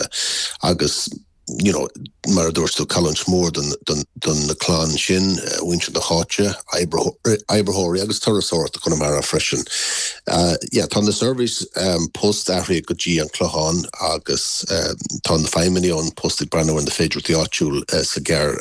Gaeltachta agus, you know, mar a dúirt tú, cailliúint mhór do na clanna sin, muintir na háite, oibritheoirí agus turasóireacht i gConamara freisin. Yeah, tá an tseirbhís poist athraithe go dtí an Clochán agus tá na feidhmeannaigh ón bpost ag breathnú ar na féidearthachtaí áitiúil sa ghearr.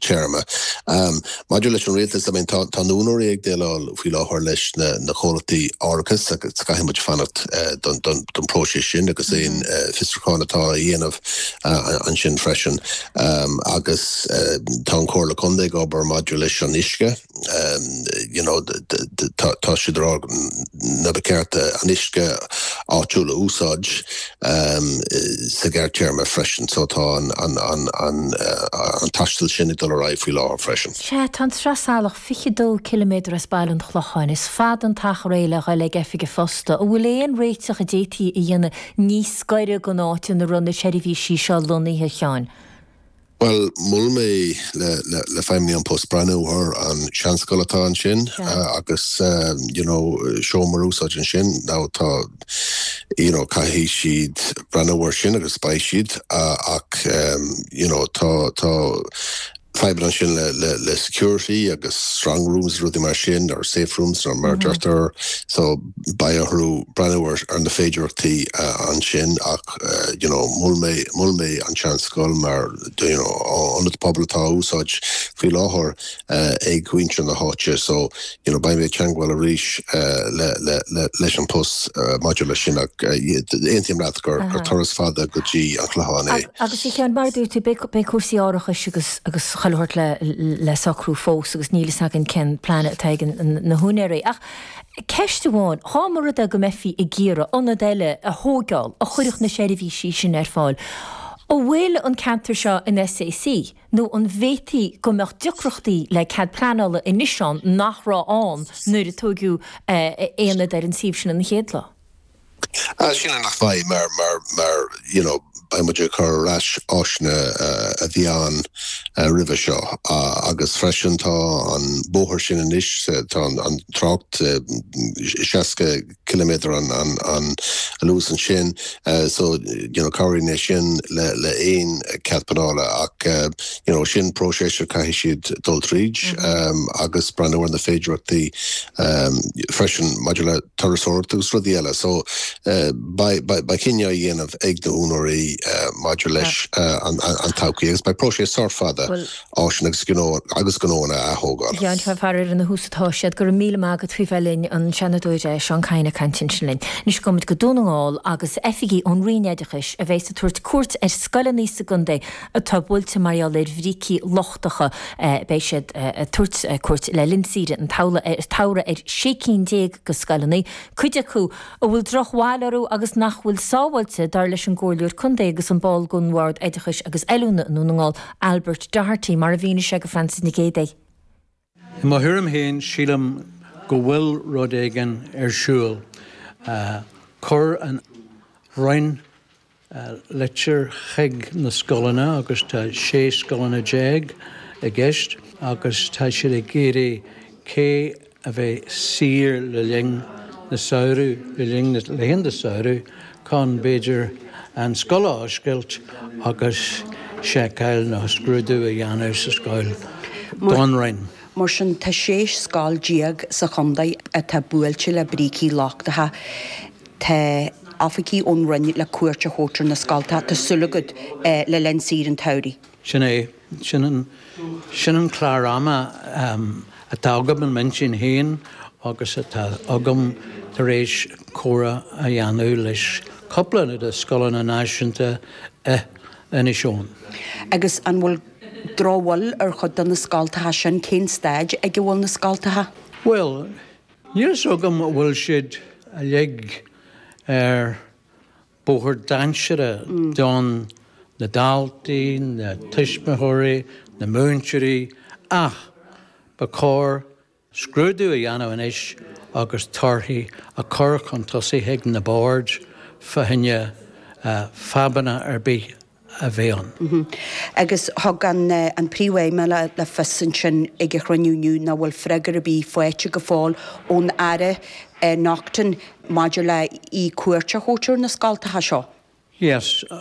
téarma. Maidir leis an rialtas, I mean, tá na húinéirí ag déileáil faoi láthair leis na comhlachtaí árachais agus caithfidh muid fanacht don próiseas sin agus aon fiosrúcháin atá á dhéanamh ansin freisin. Agus tá an Chomhairle Contae ag obair maidir leis an uisce. tá siad a rá nár cheart an uisce áitiúil a úsáid sa ghearrtéarma freisin so tá an tástáil sin ag dul ar aghaidh faoi láthair freisin. Sea, tá an tSraith Salach fiche dó ciliméadar as Baile an Chlocháin. Is fada an t-achar é le dhul ag oifig an phosta. An bhfuil aon réiteach a d'fhéadfaí a dhéanamh níos gaire don áit ina raibh na seirbhísí seo lonnaithe cheana? Bhuel, mhol mé le feidhmeannaigh An Post breathnú ar an seanscoil atá ansin agus you know seomra a úsáid ansin now tá you know caithfidh siad breathnú ar sin agus beidh siad ach you know tá tá fadhbanna ansin le le le security agus strong rooms rudaí mar sin or safe rooms nó mar a deirtear so beidh orthu breathnú ar na féidearthachtaí ansin ach ach you know mhol mé, mhol mé an tseanscoil mar you know ionad pobail atá in úsáid faoi láthair ag muintir na háite so you know beidh mé ag teagmháil arís leis An Post maidir leis sin ach aontaím leat gur turas fada go dtí an Clochán é. Agus a Sheáin mar a dúirt tú beidh cúrsaí árachais agus agus chuile shórt le socrú fós agus níl a fhios againn cén plean atá ag na húinéirí ach Ceist amháin, dhá mba rud é go mbeifí ag iarraidh ionad eile a thóigeáil a chuirfeadh na seirbhísí sin ar fáil, an bhfuil an ceantar seo in SAC nó an bhféadfaí go mbeadh deacrachtaí le cead pleanála anois ann nach raibh ann nuair a tógadh ionad ar an suíomh sin an chéad lá? Ní shílim go mbeidh, mar, mar, mar, you know, beidh muid ag cur ar ais áiseanna a bhí ann roimhe seo agus freisin tá an bóthar sin anois, tá an trácht 60 ciliméadar an, an, an luas ansin so, you know, cabhraíonn é sin le, le haon chead pleanála ach, Cinnte, sin próiseas a chaithfidh siad dul tríd agus breathnú ar na féidearthachtaí freisin maidir le turasóireacht agus rudaí eile. So beidh cinneadh á dhéanamh ag na húnóirí maidir leis an todhchaí agus beidh próiseas sách fada áiseanna agus gnónna a atógáil. Ar tús atá siad. Go raibh míle maith agat faoi bheith linn, an Seanadóir Seán Kyne ag caint ansin linn. Anois gabhfaimid go Dún na nGall agus oifigigh ón Roinn Oideachais a bheas ag tabhairt cuairt ar scoileanna sa gcontae atá buailte mar gheall ar bhrící lochtacha, beidh siad ag tabhairt cuairt le linn saoire an tsamhraidh ar sé cinn déag de scoileanna, cuid acu a bhfuil drochbhail orthu agus nach bhfuil sábháilte, dar leis an gComhairleoir Contae agus an ball den Bhord Oideachais agus Oiliúna i nDún na nGall, Albert Doherty, mar a mhínigh sé do Frances Nic Géadaigh. I mo thuairim féin, sílim go bhfuil rud éigin ar siúl. Chuir an Roinn litir chuig na scoileanna agus tá 16 scoileanna i gceist agus tá siad ag fiafraí cé a bheidh saor le linn na samhradh, le linn na laethanta samhraidh, chun, b'fhéidir, an scoil a oscailt agus seiceáil nó scrúdú a dhéanamh sa scoil don Roinn. Mar sin, tá sé scoil déag sa chontae atá buailte le brící lochtacha. Tá oifigigh ón Roinn le cuairt a thabhairt ar na scoltacha, tá súil agat, le linn saoire an tsamhraidh. Sin é Sin an clár ama atá agam i m'intinn féin agus atá agam tar éis comhrá a dhéanamh leis cúpla de scoileanna náisiúnta i Inis Eoghain. Agus an bhfuil drochbhail ar chuid de na scoltacha sin? Cén staid ag a bhfuil na scoltacha? Bhuel, níl fhios agam an bhfuil siad uilig ar bóthar dainséarach do na daltaí, na tuismitheoirí, na múinteoirí ach ba chóir scrúdú a dhéanamh anois agus torthaí a chur chun tosaigh chuig na boird faoi choinne fadhbanna ar bith a bheith ann. Agus thug an Príomh-Fheidhmeannach le fios ansin ag an chruinniú inniu nach bhfuil freagra ar bith faighte go fóill ón Aire Naughten maidir le cuairt a thabhairt ar na scoltacha seo. Yes.